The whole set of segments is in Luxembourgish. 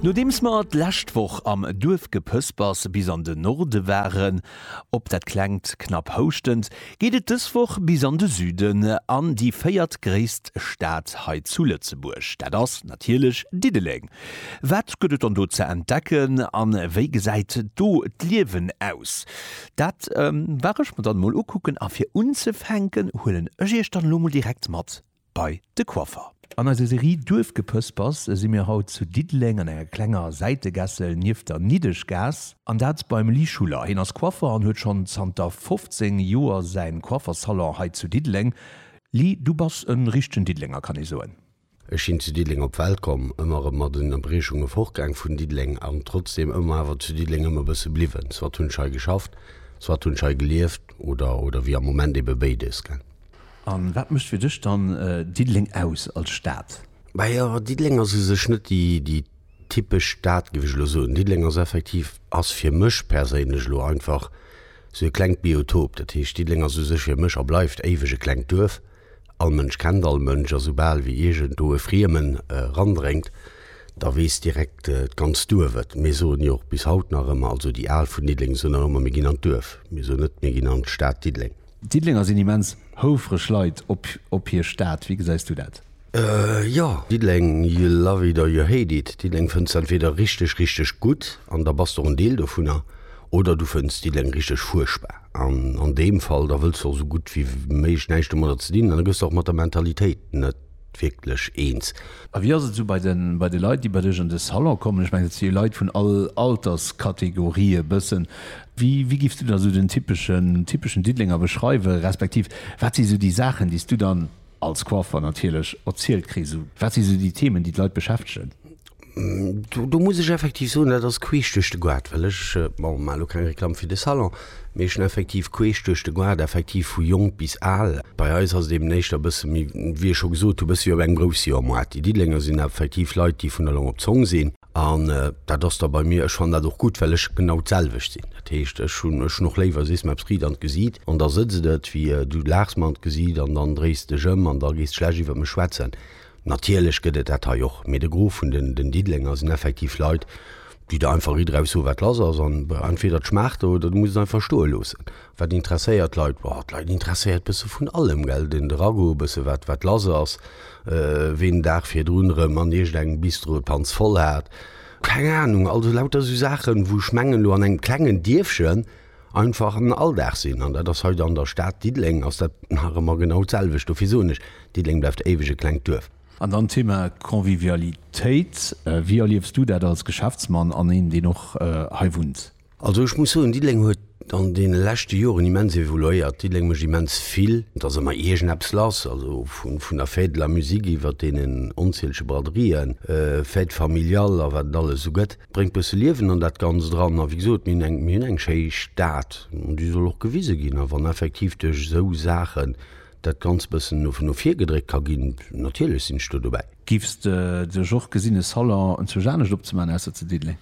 Nodeems mer d'lescht Woch am Duerfgepëspers bis an de Norde waren, op dat klengt knapp houschtend, geet et dës Woch bis an de Süden, an déi véiertgréisst Stad hei zu Lëtzebuerg, dat ass natierlech Diddeleng. Wat gëtt et dann do ze entdecken a wéi gesäit do d'Liewen aus? Dat war ech mer dann emol ukucken a fir unzefänken huelen ech iech dann elo emol direkt mat bei de Coiffer. An eiser Serie Duerfgepëspers si mir haut zu Diddeleng an enger klenger Säitegässel nieft der Niddeschgaass. An dat beim Lee Schuller. Hien ass Coiffer an huet schonn zanter 15 Joer säin Coiffersalon hei zu Diddeleng. Lee, du bass en richtegen Diddelenger, kann ee soen. Ech sinn zu Diddeleng op d'Welt komm, ëmmer erëm mat Ënnerbriechunge fortgaang vun Diddeleng an trotzdeem ëmmer awer zu Diddeleng ëm e bësse bliwwen. Soit hunn ech hei geschafft, soit hunn ech hei gelieft oder, oder wéi am Moment, ebe béides. A wat mécht fir dech dann Diddeleng aus als Stad? Majo, Diddeleng ass u sech net déi typesch Stad, géif ech elo soen. Diddeleng ass effektiv, ass fir mech perséinlech elo einfach sou e klengt Biotop. Dat heescht, Diddeleng ass u sech fir mech a bleift éiweg e klengt Duerf. All Mënsch kennt all Mënsch a soubal wéi iergendwou e Friemen erandréngt, da weess direkt d'ganzt Duerf et. Mir soen jo och bis haut nach ëmmer, also déi Al vun Diddeleng soen nach ëmmer, mir ginn an d'Duerf. Mir soen net, mir ginn an d'Stad Diddeleng. D'Diddelenger sinn immens houfreg Leit op hir Stad. Wéi gesäis du dat? Jo, Diddeleng, you love it or you hate it. Diddeleng fënns de entweder richteg, richteg gutt, an da bass de och en Deel dovunner, oder du fënns Diddeleng richteg fuerchtbar, an an deem Fall da wëlls de och esou gutt wéi méiglech näischt domadder ze dinn, an da gëss de och mat der Mentalitéit net wierklech eens. A wéi ass et esou bei de Leit, déi bei dech an de Salon kommen? Ech mengen, et si jo Leit vun all Alterskategorie e bëssen. Wéi giffs du da esou den typeschen Diddelenger beschreiwen, respektiv wat si esou déi Saachen, déi s du dann als Coiffeur natierlech erzielt kriss? Wat si esou déi Themen, déi d'Leit beschäftegen? Do muss ech effektiv soen, dat ass queesch duerch de Goart, well ech, bon, maache lo keng Reklamm fir de Salon, mee ech hunn effektiv queesch duerch de Goart effektiv vu jonk bis al. Bei eis ass et eben éischter e bësse méi, wéi ech scho gesot hu, e bësse wéi op engem Groussjoermoart. Déi Diddelenger sinn effektiv Leit, déi vun der Long op d'Zong sinn an dat ass da bei mir, ech fannen dat och gutt, well ech genau d'selwecht sinn. Dat heescht, ech hunn, ech hunn och léiwer, sees mer eppes riit an d'Gesiit an da sëtzt et, wéi du laachs mer an d'Gesiit an dann dréis de dech ëm an da gees de schlecht iwwer mech schwätzen. Natierlech gëtt et dat hei och, mee de Gros vun den Diddelenger sinn effektiv Leit, déi der einfach ritt eraus soen, wat lass ass. An entweder et schmaacht der, oder du muss et einfach stoe loossen. Wat interesséiert d'Leit? Boah, d'Leit interesséiert bësse vun allem, gell, den de Ragout, bësse wat wat lass ass, ween den Dag virdrun erëm an iergendengem Bistro d'Hanz voll hat, keng Ahnung. Also lauter esou Saachen, wou ech mengen, elo an engem klengen Dierfchen, einfach en Alldag sinn. An dat ass hei an der Stad Diddeleng ass dat nach ëmmer genau d'selwecht. Dofir soen ech, Diddeleng bleift éiweg e klengt Duerf. An dann d'Thema Convivialitéit. Wéi erliefs du dat als Geschäftsmann an een, deen och hei wunnt? Also ech muss soen, Diddeleng huet an deene leschte Joren immens evoluéiert. Diddeleng mécht immens vill. Et ass ëmmer iergendeppes lass, also vun der Fête de la musique iwwert deenen onzielege Braderien, Fêtes familiales a wat et alles esou gëtt. Bréngt bësse Liewen an dat Ganzt eran. A wéi gesot, mir hunn eng schéi Stad an déi soll och gewise ginn. A wann effektiv duerch esou Saachen dat Ganzt bëssen no vir gedréckt ka ginn, natierlech sinn ech do dobäi. Giffs de duerch och gesinn e Salon enzwousch anescht opzemaachen ausser zu Diddeleng?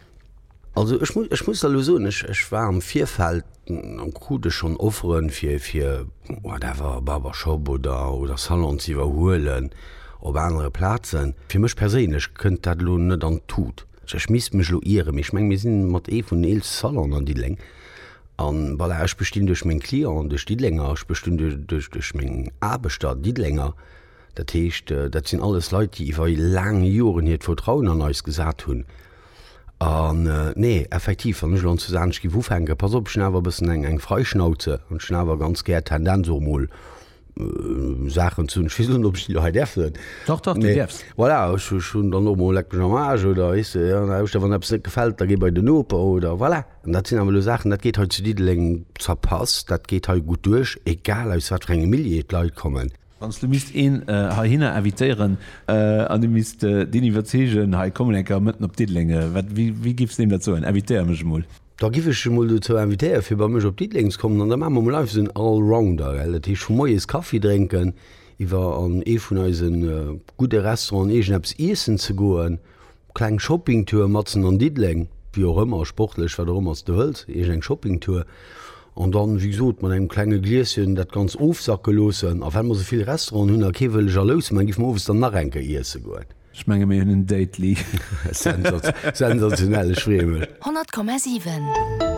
Also ech muss der elo soen, ech war am Virfeld An krut ech schonn Offeren, fir fir whatever, Barbershop oder oder Salon ze iwwerhuelen op anere Plazen. Fir mech perséinlech kënnt dat elo net an d'Tut. Ech misst mech elo ieren, mee ech menge mir si mat ee vun den eelste Salonen an Diddeleng. A voilà, ech bestinn duerch meng Clienten, duerch Diddelenger, ech bestinn duerch duerch meng Aarbechter, Diddelenger. Dat heescht, dat sinn alles Leit, déi iwwer laang Joren hiert Vertrauen an eis gesat hunn. An, nee, effektiv, wann ech elo an Susanech giff ufänken, pass op, ech hunn awer e bëssen eng, eng Freischnauze an ech hunn awer ganz gär d'Tendenz och emol Saachen ze hunn, ech weess net, ob ech déi do hei däerf soen. Dach, dach, déi däerfs. Voilà, ech, ech hunn dann och emol leck mech am Aarsch oder, weess de, jo, lauscht da, wann eppes net gefält, da géi bei den Noper oder, voilà. An dat sinn awer elo Saachen, dat geet hei zu Diddeleng zerpasst, dat geet hei gutt duerch, egal aus wat fir engem Milieu d'Leit kommen. Wann s du misst een heihinner invitéieren an du misst deen iwwerzeegen, hei kommen eng Kéier mëtten op Diddeleng, wéi giff s deem dat soen, invitéier mech emol? Da giff ech e mol dozou invitéiere fir bei mech op Diddeleng ze kommen an da maache mer mol einfach esou en Allrounder, gell. Dat heescht vu moies Kaffi drénken, iwwer an ee vun eise gudde Restauranten iergendeppes iessen ze goen, Kleng Shoppingtour matzen an Diddeleng, wéi och ëmmer, sportlech, wat och ëmmer s de wëlls, iergend eng Shoppingtour. An dann, wéi gesot, mat engem klenge Glieschen dat Ganzt ofsacke loossen. A well mer esou vill Restauranten hunn a kee wëll jalous man, giff mer owes dann nach eng Kéier iesse goen. Ech menge mir hunn en Date-ly. Sensationell, ech freeë mech. 100,7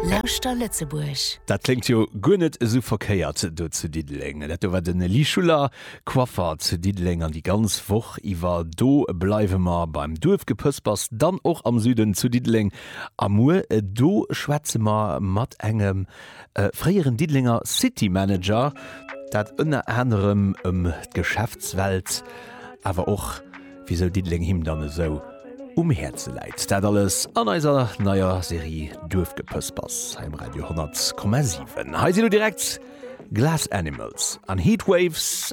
Lauschter Lëtzebuerg. Dat kléngt jo guer net esou verkéiert do zu Diddeleng. Dat do war den Lee Schuller, Quaffert, Diddeleng an déi ganz Woch iwwer do bleiwe mer beim Duerfgepëspers, dann och am Süden zu Diddeleng a muer do schwätze mer mat engem fréieren Diddelenger City Manager, dat ënner anerem ëm d'Geschäftswelt, awer och wisou Diddeleng him dann esou um Häerze läit. Dat alles an eiser neier Serie Duerfgepëspers hei um Radio 100,7. Hei sinn elo direkt Glass Animals an Heatwaves.